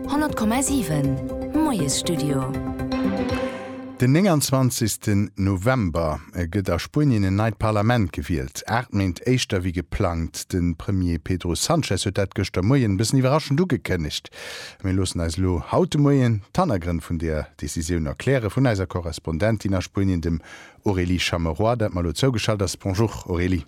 100,7 Moiesstudio. Den 29 November gëtt a Spuenien en neit Parlament gewielt, aacht Méint éischter wéi geplangt. De Premier Pedro Sanchez huet dat gëschter Moien e bëssen iwwerraschend ugekënnegt. Mir loossen eis elo haut de Moien d'Hannergrënn vun där Decisioun erkläre vun eiser Korrespondentin a Spuenien, dem Aurélie Chameroy, dat mer elo zougeschalt ass. Bonjour Aurélie.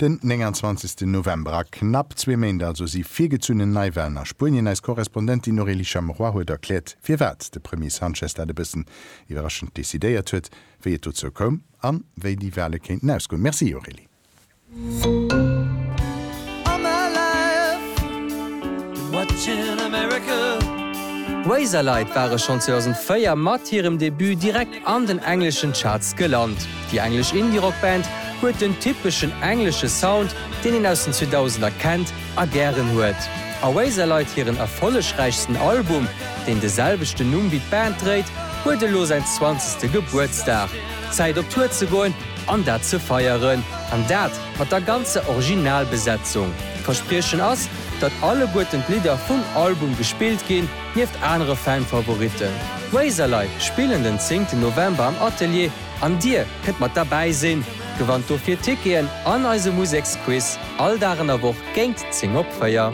Den 29 November, a knapp zwee Méint also, si virgezunnen Neiwalen a Spuenien. Eis Korrespondentin Aurélie Chamerois huet erkläert, firwat de Premier Sanchez dat e bëssen iwwerraschend decidéiert huet, wéi et dozou koum a wéi déi Wale kéinten ausgoen. Merci Aurélie. an den engleschen Charts gelant. Déi englesch Indie-Rock-Band huet den typeschen englesche Sound, deen een aus den 2000er kennt a gären huet. Oasis leit hiren erfollegräichsten Album, deen de selwechten Numm wéi d'Band dréit, huet elo säin zwanzegste Gebuertsdag. Zäit op Tour ze goen an dat ze feieren. An dat mat der ganzer Originalbesetzung. D'Verspriechen ass, datt alleguerten d'Lidder vum Album gespillt ginn. Nieft anere Fan-Favoritten, Razorlight spillen den 10 November am Atelier an dir kënnt mat derbäi sinn. Gewannt dofir Ticketen an eise Museksquiz all Dag an der Woch géingt 10 op 4.